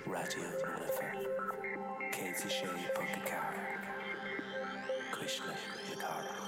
Raidió na Life 106.4, Cuisle na Cathrach.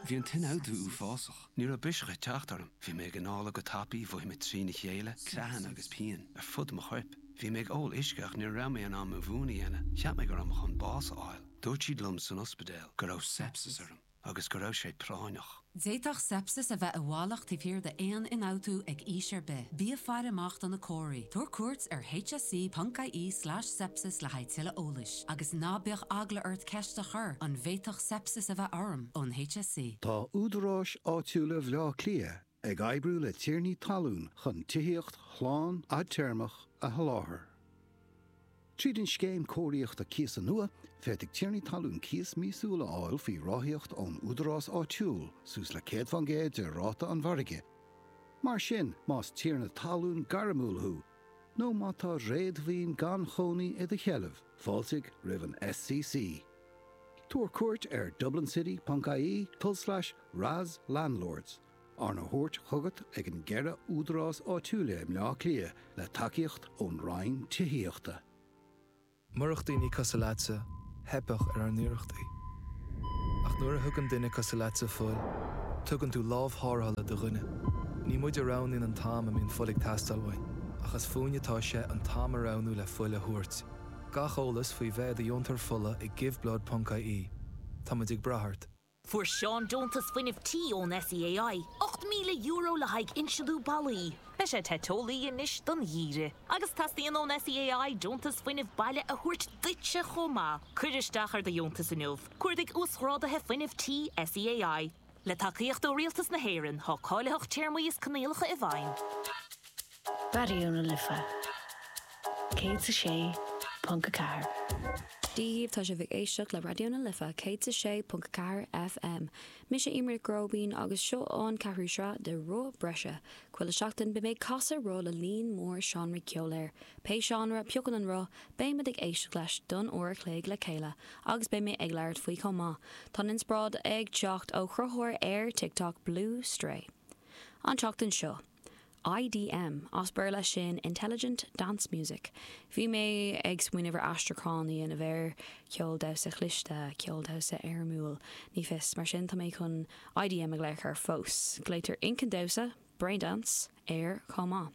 Bhí an t-ionfhabhtú uafásach. Ní raibh biseach ag teacht orm. Bhí mé ag anála go tapaidh, mhothaigh mé trína chéile, creathanna agus pian ar fud mo choirp. Bhí mé ag ól uisce ach ní raibh mé in ann mo mhún a dhéanamh. Cheap mé go raibh mé chun bás a fháil. Dúirt siad liom san ospidéal go raibh seipsis orm. agus go raibh sé práinneach. D'fhéadfadh seipsis a bheith i bhfalach taobh thiar d'aon ionfhabhtú ag aois ar bith. Bí ag faire amach do na comharthaí. Tabhair cuairt ar hse.ie slash sepsis le haghaidh tuilleadh eolais. Agus ná bíodh eagla ort ceist a chur, An bhféadfadh seipsis a bheith orm? ón hse. Tá údaráis áitiúla Bhleá Cliath ag oibriú le tiarnaí talún chun tithíocht shlán fhadtéarmach a sholáthar. Tríd an scéim cóiríochta cíosa nua, féadfaidh tiarnaí talún cíos míosúil a fháil faoi ráthaíocht ón údarás áitiúil, suas le céad faoin gcéad de ráta an mhargaidh. Mar sin, más tiarna talún gairmiúil thú, nó má tá réadmhaoin gan chónaí i do sheilbh, fáiltigh roimh an SCC. Tabhair cuairt ar dublinCity.ie, tulslais, ras, landlords. Arna thabhairt chugat ag an gceithre údarás áitiúil i mBleá Cliath le tacaíocht ón Roinn Tithíochta. Murach daoine cosúil leatsa, theipfeadh ar ár n-iarrachtaí. Ach nuair a thugann duine cosúil leatsa fuil, tugann tú lámh tharrthála do dhuine. Ní muid a roghnaíonn an t-am a mbíonn fuil ag teastáil uainn, ach is fúinn atá sé an t-am a roghnú le fuil a thabhairt. Gach eolas faoi bheith i do dheontóir fola ag Give Blood ponc IE Tá muid ag brath ort. Fuair Seán deontas fuinnimh tí ón SEAI, €8,000 le haghaidh insliú ballaí. Beidh sé te teolaí anois don gheimhreadh. Agus teastaíonn ón SEAI deontas fuinnimh baile a thabhairt duitse chomh maith. Cuir isteach ar do dheontas inniu, Cuardaigh Uasghráduithe Fuinnimh Tí SEAI. Le tacaíocht ó Rialtas na hÉireann, tá cáilitheacht téarmaí is coinníollacha i bhfeidhm. Raidió na Life 106.4. Dia dhaoibh, tá sibh ag éisteacht le Raidió na Life 106.4 FM. Mise Emer Nic Róibín agus seo an ceathrú sraith de Roth Breise. Chuile sheachtain beidh mé ag casadh roth le líon mór seánraí ceoil air. Pé seánra a phiocann an roth, beimid ag éisteacht leis don uair a chloig le chéile agus beidh mé ag labhairt faoi chomh maith. Tá an inspioráid ag teacht ó chruthaitheoir ar TikTok, Blue Stray. An tseachtain seo, IDM, as Béarla sin Intelligent Dance Music. Bhí mé ag smaoineamh ar aistriúchán a dhéanamh air, ceol damhsa chliste, ceol damhsa éirimiúil, ní fios. Mar sin, tá mé chun IDM a ghlaoch air fós. Glaoitear Inchinn Damhsa, Brain Dance, air chomh maith.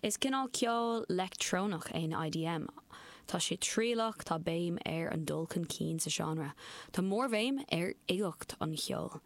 Is cineál ceol leictreonach é an IDM. Tá sé trialach, tá béim ar an dul chun cinn sa tseánra, tá mórbhéim ar uigeacht an cheoil.